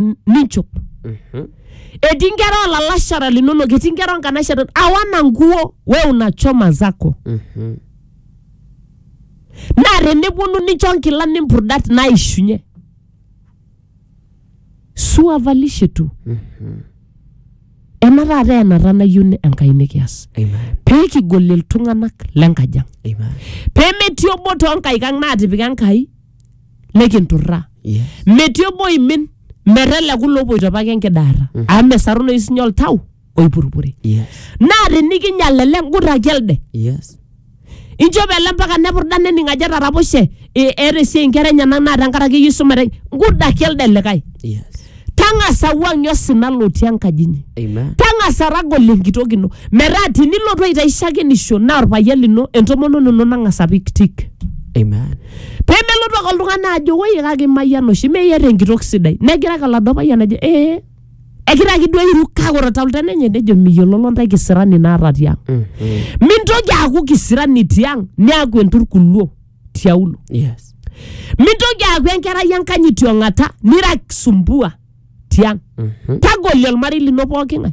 n- ninchop Mhm. etii inkera olalashara linonok etii inkera onkanashara awana nguo we unachoma zako Mhm. naa teneponu nincho nkilani mpudat naishunye suavalishe tu ena taata enata nayieu ni- enkai nikias Amen. pee kigol iltung'anak lenkajang Amen. pee metii obo toonkaik ang naatipika enkai nikinturraa Yes. metii obo oimin meteleku lopoito apake enkidaarra amu mesarunoyu sinye oltau oipurupuri Yes. naa tinikinyal ele ngurraki elde Yes. inchop ele mpaka nepurda nening ajo etaraposhe e- eeta esiai inkera enyenak naa tenkaraki iyieu isumare ngurraki elde likae Yes. tang'asa wuang'ie osina lotii enkaji inyi Amen. tang'asa ragol enkitok ino metaa tinilotu aitaishakenisho naa orpayian lino entomononi ino nang'asa apik tik Amen. pemelotu ake oltung'ani ajo woi kake imayian oshi meyiata enkitok sidai negira ake oladuo payian ajo ee egira ake duo airu kake ore tauta enye nejo miyiololo ntae kisirani naata tiang mintoki aaku kisirani tiang niaku enturkuluo tiaulo Yes. mintoki aaku enkerai enkanyit tiong'ata nira kisumbua tiang Mhm. tagolie olmarei lino pooking'ae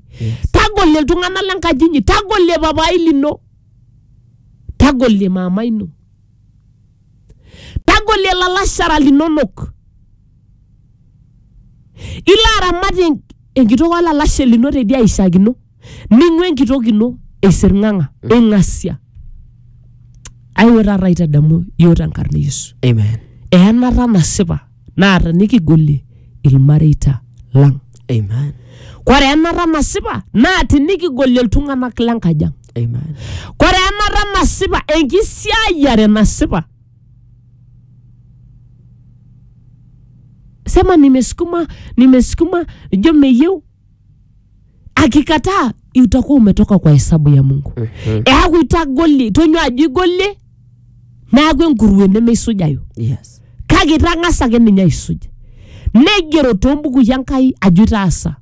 tagolie iltung'anak lenkaji inyi tagolie papai lino tagolie maama ino tagolie ilalashara linonok ilo aramat en- enkitok olalashe lino tedi aishakino ning'ua enkitok ino eisirng'ang'a ing'asia aiwe taata aitadamu yiok tenkarna e yesu amen eyanata nasipa naata nikigolie ilmareita lang Amen. kore enata nasipa naa tinikigolie iltung'anak lenkaji ang Amen. kore enata nasipa enkisiayiare nasipa sema nimesukuma nimesukuma ijo meyieu akikataa utakuwa umetoka kwa hesabu ya mungu Mhm. eaku itagoli tonyua ajo igolie neaku enkurue nemeisujayu Yes. kake itang'asa ake ninye aisuj neigero toombukui enkai ajo itaasa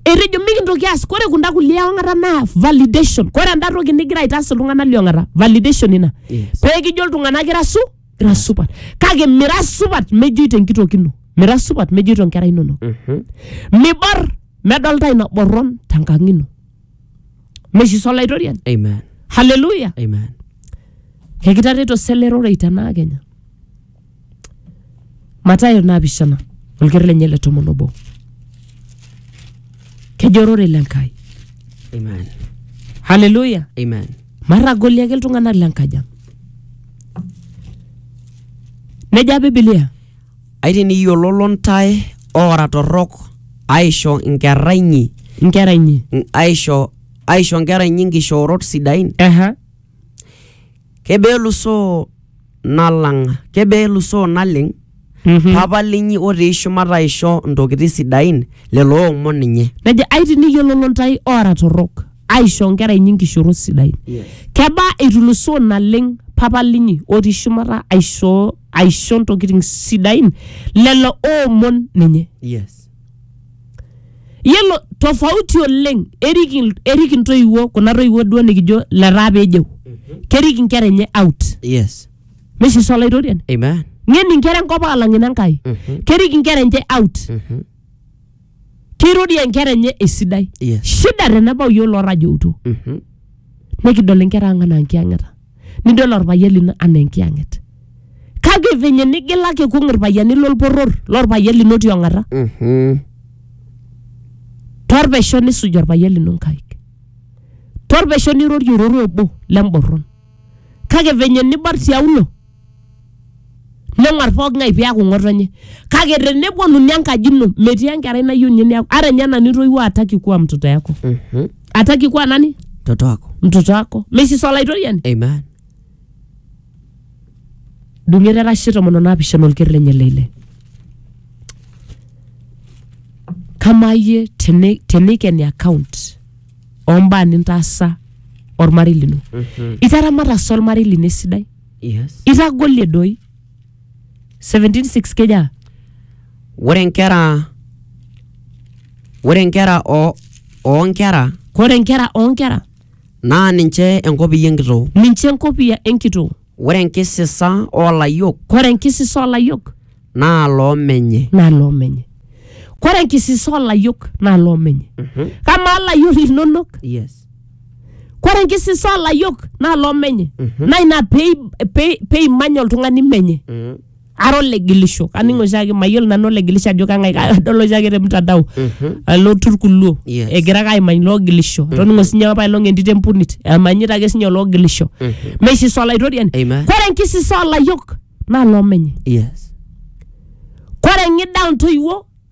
etejo mikintoki aas kore kunda kulie ong'ata naa validation kore enda toki nigira aitaas iltung'anak liong'ata validation ina Yes. pee kijo iltung'anak ira su ira supat kake mira supat mejoito enkitok ino mira supat mejoito inkera inonok Mhm. mibor medolta ina borron tenkang ino meshiso olaitoriani Amen. haleluya Amen. ekitareto selerorei tenaa kenya matayo naapishana olker lenye le tomon obo kejo ororei le nkai Amen. haleluya Amen. matagoli ake iltung'anak le nkajang Neja Biblia. Aitiniyiololo ntae oora torrok aisho nkerra inyi Nkera inyi. n- aisho aisho nkera inyi nkishoorot sidain Ehe. kebelusoo nalang kebelusoo naleng Papa linyi otii shumata aisho ntokitin sidain lelo oomon ninye. Nejo ai tiniyiololo ntae oora torrok aisho nkera inyi nkishorot sidain. Yes. Kebaa eitulusoo naleng Papa linyi otii shumata aishoo aisho ntokitin sidain lelo oomon ninye. Yes. Yiolo tofauti oleng erik, il- erik intoiwuo kuna toiwuo duo nikijo letaa peejeu kerik inkera enye out. Yes. meshisu olaitoriani Amen. ng'en inkera enkop aalang ine Nkai Mhm. kerik inkera enche out Mhm. kirorie inkera enye esidai Yes. shida tenebau yiok lorrajoutuo Mhm. nikidol inkera ang anaa nkiyang'eta nidol orpayian lino anaa enkiyang'et kake venye nigilaki kung irpayiani lolporror lorpayian lino tiong'ata Mhm. torpesho nisuj orpayian lino nkaik torpesho nirorie ororo obo lemborron kake venye nibar tiaulo neng'uar pooki ng'ae piaku ng'otonye kake teneponuni enkaji ino metii enkerai nayieu ninye niaku ara ninye nanu itoiwuo ataki kuwa mtoto yako Mhm. ataki kuwa nani Mtoto wako. mtoto wako mesis olaitoriani Amen. dung'et erashe tomon onaapishana olker lenye leile kamaa iyie teni- tenikeni account ombaa nintaasa ormarei lino Mhm. itaramata sa ormarei lino esidai Yes. itagolie doi 176 keja Ore nkera ore nkera o oo nkera kore nkera onkera naa ninche enkopiyia enkitoo ninche enkopia enkitoo Ore enkisisa oo layiok Kore enkisisa oolayiok naa loo menye. naa loo menye. Kore enkisisa oolayiok naa loo menye. Kamaa layiok linonok? Yes. Kore enkisisa oolayiok naa loo menye. Naa ina pei- pei- peimany oltung'ani menye. ara olegilisho kaning oshiake mayiolo nanu olegilisho ajo kang'ae ka- kadol oshiake te mtandao alotu irkuluo Yes. egira ake aimany loogilisho toning'o sinye apailong entito empunit emanyita ake sinye oloogilisho meisisa olaitoriani Amen. kore enkisisa olayiok naa loomenye yes kore ng'ida ontoiwuo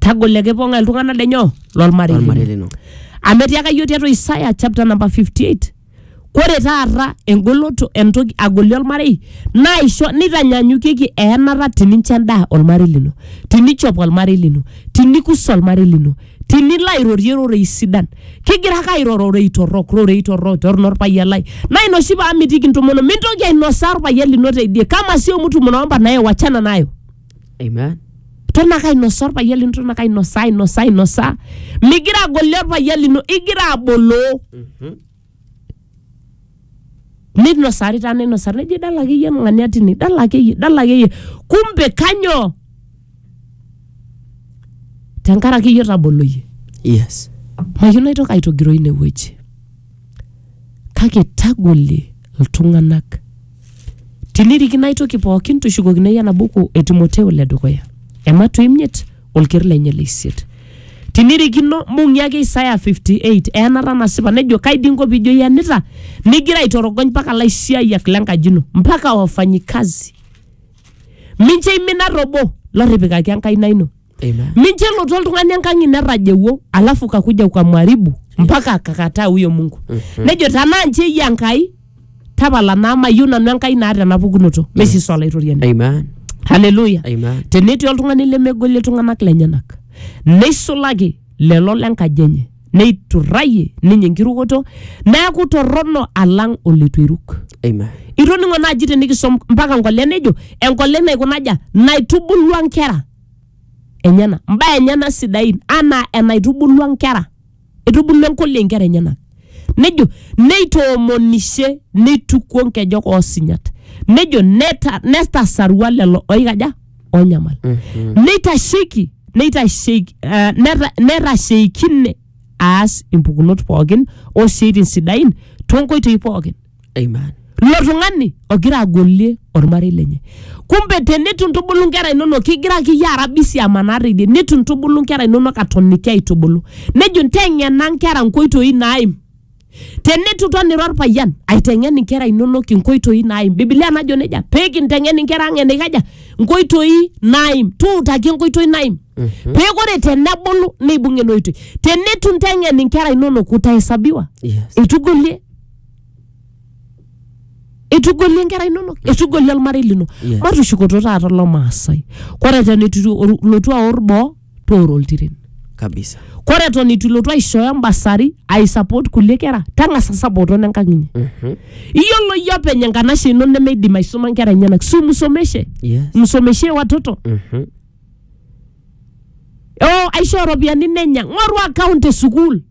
tagolo ekipong'a iltung'anak lenyo lolmarei lolmarei lino. lino amu etiaka yiok tiatua Isaya chapter number 58 kore taata engoloto entoki agoli olmarei naisho nitanyanyukieki eenata tinincho endaa olmarei lino tinichop olmarei lino tinikus olmarei lino tinilo airorie rorei sidan kigira ake airo rorei torrok rorei torrok torrono orpayian lai naa ina oshi paamitiki intomono mintoki ainosaa orpayian lino teidie kama sio mtu mnaomba naye wachana nayo Amen. Eton ake ainosaa orpayian lino, eton ake ainosaa, ainosaa, ainosaa. Migira agolie orpayian lino, igira aboloo. Mhm. Ninosari taa ninosari, nejo idala akeyie oltung'ani atini, idala akeyie, idala akeyie. Kumbe kanyoo? Tenkaraki iyie otaboloyie. Yes. Mayieu naitoki aitogiroi inewueji. kake tagolie iltung'anak tinirikino ai toki pookin tushukokino iyie enabuku e timoteo le dukuya ematu imiet olker lenye le isiet tinirikino mbung'i ake isaya 58 eenata nasipa nejo kai dii inko piijo iyanita nigira aitorogony mpaka laisiayiak lenkaji ino mpaka wafanyikazi mincho imin ata obo lotipikaki enkaina ino Amen. mincho elotu oltung'ani enkang ino etajeuo alafu kakuja ukamwaribu mpaka akakataa huyo mungu nejo tanaa nche iyie enkai tapala naa mayieu nanu enkai naata ena pukunoto mesiso olaitoriani Amen. haleluya Amen. tenetii oltung'ani lemegolie iltung'anak lenyenak neisulaki lelo lenkaji enye neiturrayie ninye enkirukoto neaku torrono alang oleitu eiruk Amen. itoning'o naaji tenikisom mpaka nkole nejo enkole naikunaja naitubulua nkera enyena mbaa enyena sidain anaa enaitubulua nkera itubulua enkolia inkera enyenak nejo neitoomonishe neitukuo nkejek oosinyat nejo neta- netasarua lelo oikaja onyamal neitasheiki neitasheiki eh, neta- netasheikine aas impukunot pookin osiaitin sidain toonkoitoi pookin Amen. ilo tung'ani ogira agolie ormarei lenye kumbe tenitu intubulu nkera inonok kigira akeyie ara bisi amanaa teidie nitu intubulu nkera inonok atoniki aitubulu nejo nteng'ena nkera nkoitoi naaim tenitu iton ira orpayian aiteng'en inkera inonok inkoitoi naaim bibilia najo nejia peekinteng'en inkera ang enikaja nkoitoi naaim tuutaki enkoitoi naaim pee ore tenebulu neibung ena oitoi tenitu inteng'en inkera inonok utahesabiwa Yes. eitugolie etugolie nkera inonok etugolie olmarei lino Yeah. matushukoto taata olo maasai kore eton eitu iru- ilotu aor boo tooro oltiren kabisa kore eton eitu ilotu aishooyo embasari aisupport kulie kera tang'asa sapoto nenkang inyi iyiolo iyie openy enkanashe ino nemeidim aisuma nkera enyenak si msomeshe yes msomeshe watoto Mhm. oh, aishoo ropiyiani nenya ng'oru account e sukuul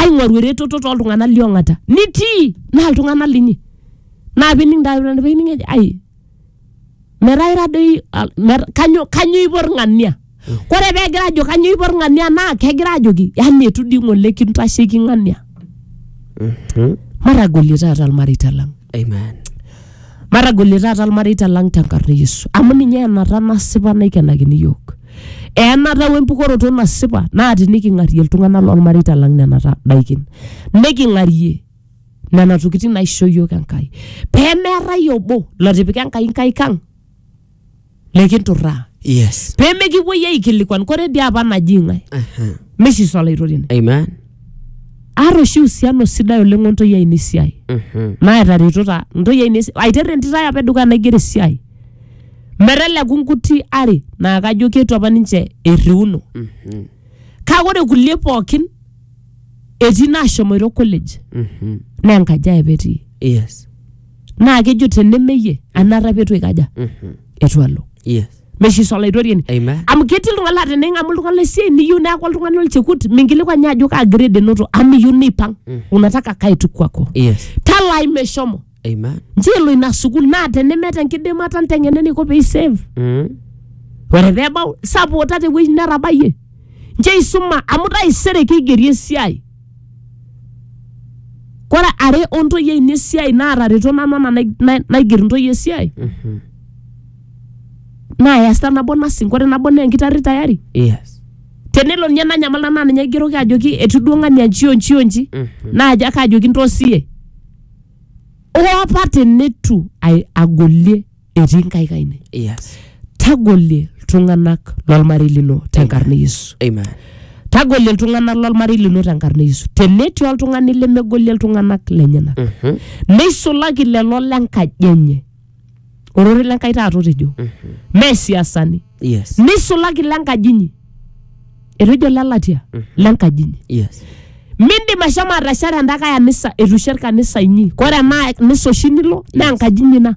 aing'oru eretoto toltung'anak liong'ata nitii naa iltung'anak linyi naa pining taa pining ejo ai metaa ira doi al- mer- kanyo kanyo ipo irng'ania kore pegira ajo kanyo ipo irng'ania naa kegira ajoki yani etu dii ng'ole kintasheiki ng'ania matagolie taata ilmareita lang Amen. matagolie taata ilmareita lang tenkarna e yesu amu ninye enata nasipa naikenakini yiok enata wempukoroto nasipa naa tiniking'arie iltung'anak lolmareita lang nena ta- daikin niking'arie nena tokitin naisho yiok enkai pemeetai obo lotipika enkai nkaik ang likinturraa Yes. pee mikipuoi aikilikuan kore dii apa naji ng'ae Aha. mesis olaitoriani Amen. aata oshi usiano sidai oleng ontoi ainei esiai Mhm. naetaretota ntoi ainei esi- aiter entito ai apa edukuya naigero esiai meteleku nkuti are naa kajo ketu apa ninche erriuno Mhm. kake ore kulie pookin etii naashomoito college Mhm. naa enkaji ai apa etii Yes. naa kejo tenemeyie anata petu ikaja Mhm. etu alo Yes. meshiso olaitoriani Amen. amu ketii iltung'ani laa tening'amu oltung'ani lesiai niyieu neeku oltung'ani olchekut minkilikuan ninye ajo kaa grade enoto amu iyieu neipang unataka kae tu kwako Yes. talai meshomo Amen. nchoo elo ina sukul naa tenemeeta enkidimata nteng'ena eniko pee isave Mm. ore pee ebau sapota tewueji netabayie nchoo isuma amu taisere keigeri esiai Kore are ontoyie ainei esiai naatareto nanu anaa nai- nai- naiger intoyie esiai Mhm. naa easita nabo nursing kore nabo naa enkitarri tayari Yes. tenelo ninye nanyamal nanu naa ninye aigeroki ajoki etiu duo ng'ania nji o nji o nji Mhm. naaji ake ajoki ntoosie hoo apa teneitu ai- agolie etii nkaik ainei Yes. tagolie iltung'anak lolmarei lino tenkarna e yesu Amen. tagolie iltung'anak lolmarei lino tenkarna e yesu tenetii oltung'ani lemegolie iltung'anak lenyenak Mhm. neisulaki lelo lenkaji enye orore lenkai taata otejo mee siasani Yes. neisulaki lenkaji inyi etejo lelatia lenkaji inyi Yes. mindim ashomo atashare endakae anisa eitu isher kanisa inyi kore ena nisa oshi nilo naa enkaji inyi ina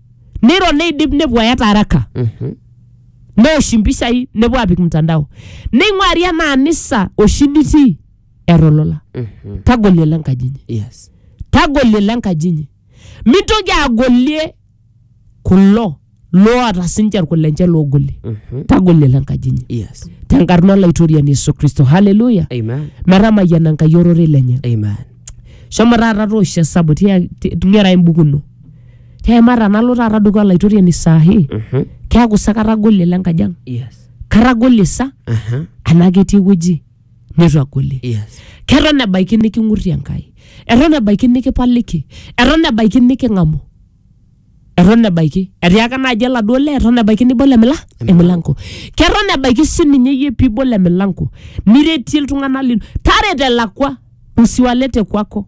neiro neidip nepuo ayata araka Mhm. neosh impishai nepuo apik mtandao neing'uari ena anisa oshi nitii eeta olola Mhm. tagolie ele enkaji inyi Yes. tagolie ele enkaji inyi mintoki agolie kulo loota sinche irkulenche loogolie Mhm. tagolie ele enkaji inyi Yes. tenkarna olaitoriani yesu kristo haleluya Amen. metamayiana enkai ororei lenye Amen. shomo taata toosho esabu tia- ti- ng'era embuku ino Tiai maata tenalo taata dukuya olaitoriani saa hii Mhm. keeku sa katagolie le nkaji ang Yes. katagolie sa Aha. anaa ketii ewueji neitu agolie Yes. keton ebaiki niking'urrie enkai eton ebaiki nikipaliki eton ebaiki niking'amu eton ebaiki etiaka naaji oladuo lee eton ebaiki nibol emila emilanko keton ebaiki sininye iyie piibol emilanko niretie iltung'anak lino tarete elakwa usiwalete kwako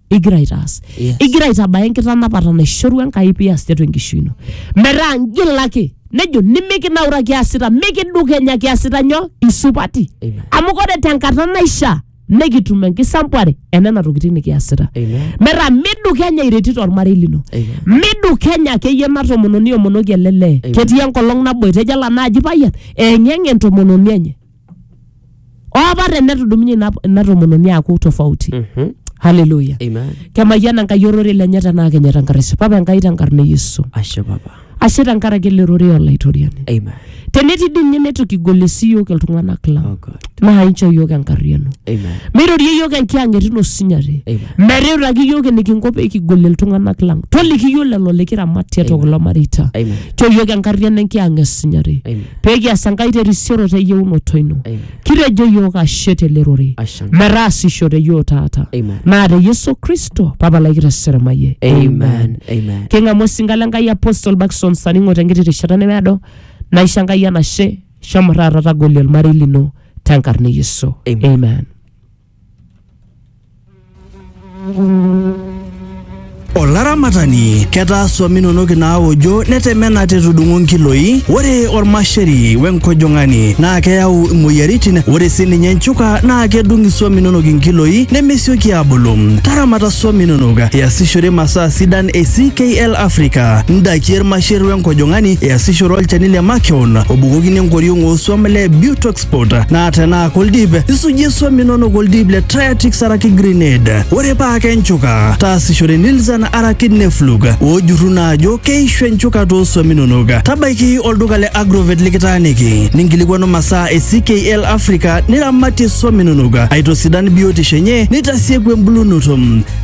igira aitaas Yes. igira aitabaya enkitanapata naishorua enkai pias tiatua enkishui ino metaa ngilaki nejo nimikinaura kiasita mikidukenya kiasita nyo isupati Amen. amu kore tenkata naishaa nikitum enkisampuare enena tokitin nikiasita Amen. metaa midukenya iretito ormarei lino Amen. midukenya akeyie ena tomononi omonoki ele lee Amen. ketii enkolong naboita ejo ela naaji payian eng'eng entomononi enye opa tenetudumunye ina, ina tomononi aaku tofauti Mhm. haleluya Amen. kemayiana enkai ororei lenye tenaa kenya tenkarashe papa enkai tenkarna e yesu Ashe papa. ashe tenkaraki ele rorei olaitoriani Amen. tenetii dii ninye neitu kigol esiyook iltung'anak lang Oh God. naa inchoo iyiok enkarriano Amen. meirorie iyiok enkiyang'et ino sinyati Amen. meriutaki iyiok enikinko pee kigol iltung'anak lang toliki iyiok lelo likiramat tiatua kulo mareita Amen. choo iyiok enkarriano enkiyang'et sinyati Amen. pee kias enkai terisioro te yieunoto ino Amen. kitejo iyiook ashe tele rorei Ashe. metaasisho te yiok taata Amen. naa te yesu kristo papalaki te seremaye Amen. Amen. king'amu osinka le nkai apostle bakson saningo tenkiti rishata nemeado naisho enkai enashe shomo taata tagolie olmarei lino tenkarna e yesu Amen. amen Olaramatani, ketaa swam inonok inaaojo netemena tetudung'o nkiloi. Ore olmasheri wenkojong'ani naa keyau imoyiaritin. Ore sininye nchuka naa kedung iswam inonok inkiloi nemesioki aabulu. Taramata swam inonok iasishore masaa sidan e CKL Africa, ndaiki, ilmasher wenkojong'ani, iasishore olchani le makeon obukokini enkoriong ooswam le Butox passport naa tenaa koldip isujie swam inonok oldip le Triatix araki Grenade ore paa kenchuka taasishore Nilzan araki Neflug oojurru naa ajo keishu enchuka too swam inonok tabaiki olduka le Agrovet likitaaniki ninkilikwanu masaa e CKL Africa niramatie swam inonok aitosidan biotisho enye nitasieku embulunoto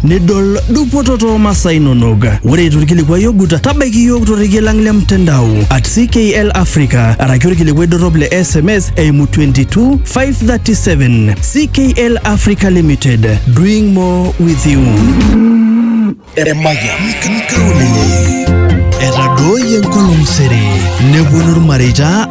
nidol dupoto too masaa inonok. Ore eitu ilkilikuai ogut, tabaiki iyiook torrekie lang le mtandao at CKL Africa araki olkilikuai dorrop le SMS eimu 22537. CKL Africa Limited, doing more with you. Emayian nkaulele etadooyie enkolong sere neponu ilmareita